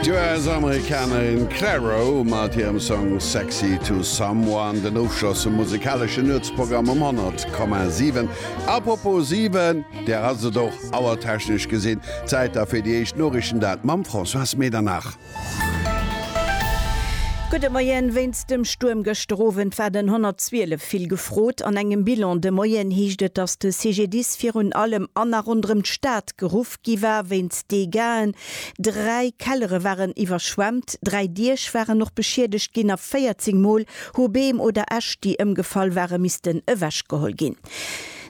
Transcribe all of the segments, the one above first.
D'US-Amerikanerin Clairo mat hirem Song Sexy to Someone, den Ofschloss vum musikaleschen Nuetsprogramm um 100,7. Apropos 7, där ass et och auertechnesch gesinn Zäit da fir déi éischt Noriichten, dat mam Françoise Medernach. Gudde Moien, Wéinst dem Stuerm gëschter Owend war den 112 vill gefrot. An engem Bilan de Moien heescht et, datt de CGDIS virun allem an a ronderëm d'Stad geruff gi war wéinst Degaen. Dräi Kellere waren iwwerschwemmt, dräi Diech waren och beschiedegt ginn a 14 Mol hu Beem oder Äscht, déi ëmgefall ware missten ewechgeholl ginn.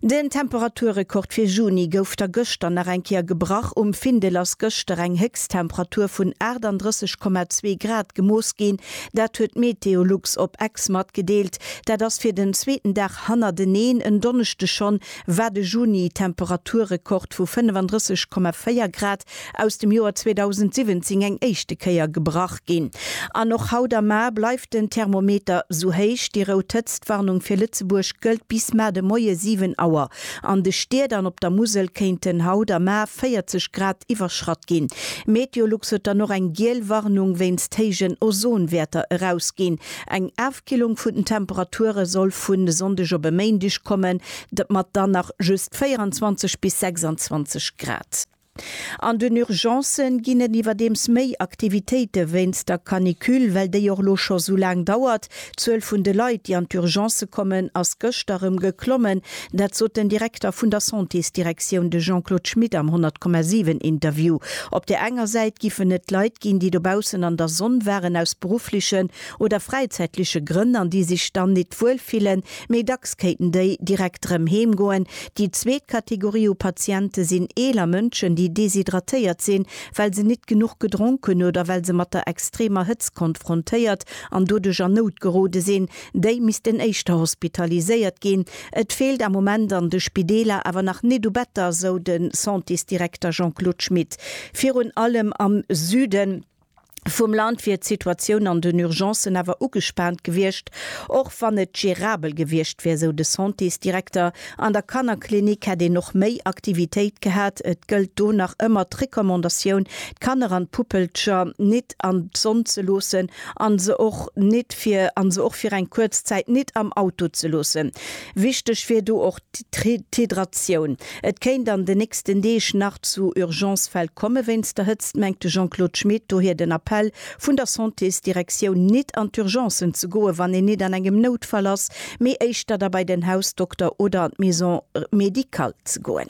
Den Temperaturrekord fir Juni gouf da gëschter nach eng Kéier gebrach. Um Findel ass gëschter eng Héchsttemperatur vun 38,2 Grad gemooss ginn. Dat huet Meteolux op Ex matgedeelt. Dat ass fir den zweeten Dag hannerteneen en Donneschdeg schonn war de Juni Temperaturrekord vu 35,4 Grad aus dem Joer 2017 eng éischte Kéier gebrach ginn. An och haut am Mar bleift den Thermometer sou héich. Déi rout Hëtztwarnung fir Lëtzebuerg gëllt bis mar de Moie 7 Auer. An de Stied an op der Musel kéinten haut am Mar 40 Grad iwwerschratt ginn. MeteoLux huet dann och eng giel Warnung wéinst héijen Ozonwäerter erausginn. Eng D'Killung vun den Temperature soll vun e Sonndeg op e Méindeg kommen, dat mat dann nach just 24 bis 26 Grad. An den Urgencë ginn et iwwerdeems méi Aktivitéite wéinst der Canicule, well déi och elo scho sou laang dauert. D'Zuel vun de Leit, déi an d'Urgencë kommen, ass gëschter erëm geklommen. Dat sot den Direkter vun der Santésdirektioun, de Jean-Claude Schmit am 100,7 Interview. Op där enger Säit giffen et Leit ginn, déi dobaussen an der Sonn waren, aus berufflechen oder fräizäitliche Grënn an déi sech dann nit wuel fillen, méi dacks kéinten déi direkt erëm heem goen. Déi zweet Kategorie u Patiente sinn eeler Mënschen, déi deshydratéiert sinn, well se nit genuch gedronk hunn oder well se mat der extremer Hëtzt konfrontéiert an doduerch an Nout gerode sinn. Déi missten éischter hospitaliséiert ginn. Et feelt am Moment an de Spideeler awer nach nit u Better, sou de Santésdirekter Jean-Claude Schmit. Virun allem am Süden. vum Land wier d'Situatioun an den Urgencen awer ugespaant gewiescht, och wann et gerabel gewiescht wier, sou de Santésdirekter. An der Kannerklinik hätt een och méi Aktivitéit gehat. Et gëllt do nach ëmmer d'Recommandatioun, d'Kanner an d'Puppelcher nit an d'Sonn ze loossen an se och nit fir an se och fir eng kuerz Zäit nit am Auto ze loossen. Wichteg wier do och, D'Hydratioun. Et kéint an de nächsten Deeg nach zu Urgence-Fäll komme wéinst der Hëtzt, mengt de Jean-Claude Schmit, dohier den Appell vun der Santésdirektioun, nit an d'Urgencen ze goen, wann een nit an engem Noutfall ass, mee éischter da bei den Hausdokter oder an d'Maison médicale ze goen.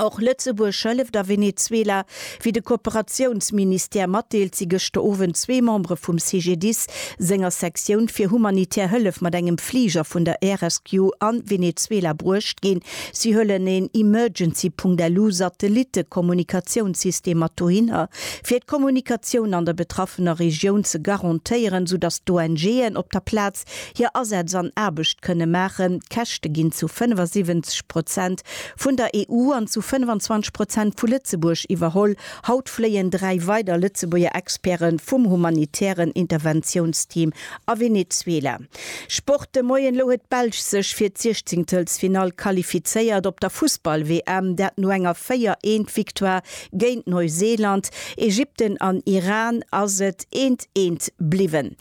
Och Lëtzebuerg hëlleft a Venezuela. Wéi de Kooperatiounsministère matdeelt, si gëschter Owend zwee Membere vum CGDIS senger Sektioun fir humanitär Hëllef mat engem Fliger vun der Air Rescue a Venezuela bruecht ginn. Si huelen een Emergency.lu Satellitte-Kommunikatiounssystem mat dohinner, fir d'Kommunikatioun an der betraffener Regioun ze garantéieren, sou datt d'ONGen op der Plaz hir Asätz an Aarbecht kënne maachen. D'Käschte ginn zu 75 Prozent vun der EU an zu 25 Prozent vu Lëtzebuerg iwwerholl. Haut fléien dräi weider Lëtzebuerger Experte vum humanitären Interventiounsteam a Venezuela. Sport de Moien, Elo huet d'Belsch sech fir d'Siechzéngtelsfinall qualifizéiert op der Fussball-WM, dat no enger 4 eent Victoire géint Neuseeland. Ägypten an Iran ass et eent eent bliwwen.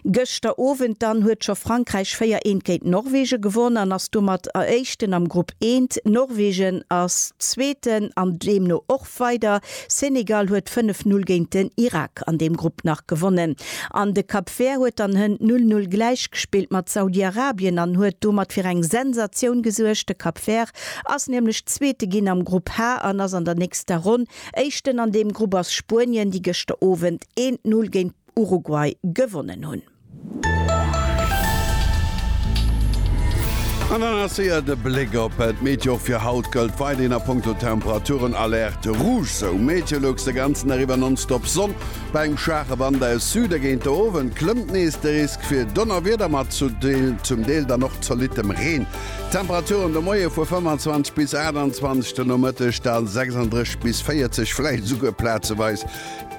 Gëschter Owend dann huet scho Frankräich 4 eent géint Norwegen gewonn an ass domat Eréischten am Grupp eent. Norwegen ass Zweeten an deemno och weider. Senegal huet 5 Null géint den Irak an deem Grupp nach gewonnen an de Cap Vert huet dann hënt 0 Null gläich gespillt mat Saudi-Arabien an huet domat fir eng Sensatioun gesuergt. De Cap Vert ass nämlech Zweete ginn am Grupp H an ass an der nächster Ronn Éischten. An deem Grupp ass Spuenien, déi gëschter Owend eent Null géint Uruguay gewonnen hunn. An dann ass séier de Bléck op d'Meteo. Fir haut gëllt weiderhin a Punkto Temperaturen Alerte Rouge. Sou Meteolux de ganzen Dag iwwer nonstop Sonn bei engem schwaache Wand aus Süde. Géint de Owend klëmmt nees de Risk fir Donnerwieder mat zum Deel dann och zolittem Reen. Temperaturen de Moie vu 25 bis 28, de Nomëtteg da 36 bis 40, vläicht esouguer plazeweis.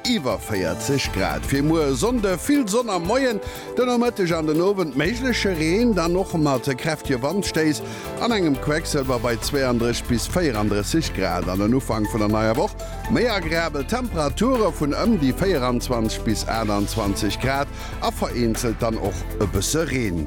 Iwwer 40 Grad fir muer e Sonnde, vill Sonn am Moien, de Nomëtteg an den Owend méigleche Reen, dann och mat kräftige Wandstéiss an engem Quecksëlwer bei 32 bis 34 Grad. An den Ufank vun der neier Woch méi agreabel Temperature vun ëm déi 24 bis 28 Grad a vereenzelt dann och e bësse Reen.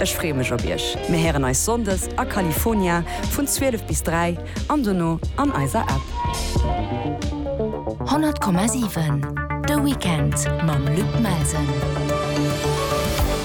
Ech freeë mech op iech. Mir héieren eis Sonndes a California vun 12 bis 3 an dono an eiser App. 100,7 De Weekend mam Luc Melsen.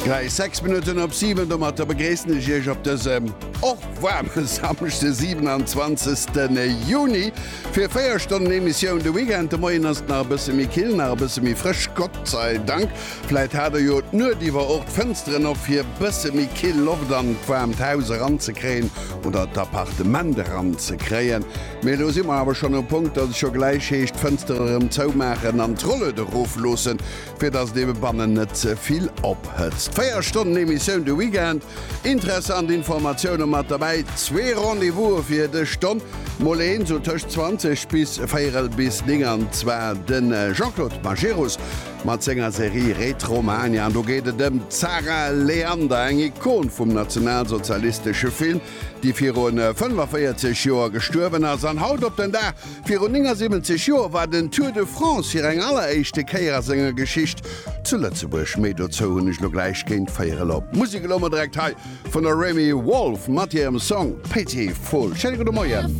Gläich 6 Minutten op 7. Domatter begréissen ech iech op dësem och waarme Samschde 27 Juni fir 4 Stonnen Emissioun De Weekend. De Moien ass et nach e bësse méi kill, nach e bësse méi frësch, Gott sei Dank. Vläit hat e jo d'Nuet iwwer och d'Fënsteren op, fir bësse méi kill Loft an d'waarmt Haus eranzekréien oder d'Appartement eranzekréien. Mee do si mer awer schonn um Punkt, dass et scho gläich heescht, d'Fënster erëm zoumaachen an d'Rolled erofloosse, fir dass et eebe bannen net ze vill ophëtzt. Véier Stonnen Emissioun de Weekend, interessant Informatioune mat derbäi, zwee Rendez-vouse fir dës Stonn, mol een sou tëscht 20 bis véierel bis 9 an zwar de Jean-Claude Majerus, Mat senger Serie Retromania, do geet et ëm d'Sarah Leander, eng Ikon vum nationalsozialistesche Film, déi viru 45 Joer gestuerwen ass. An haut op den Dag viru 79 Joer war den Tour de France hir eng alleréischte Kéier a senger Geschicht zu Lëtzebuerg. Méi dozou hunn ech elo gläich géint véier elo. Musek elo mol direkt hei vun der Remi Wolf mat hirem Song Pitiful. Schéine gudde Moien.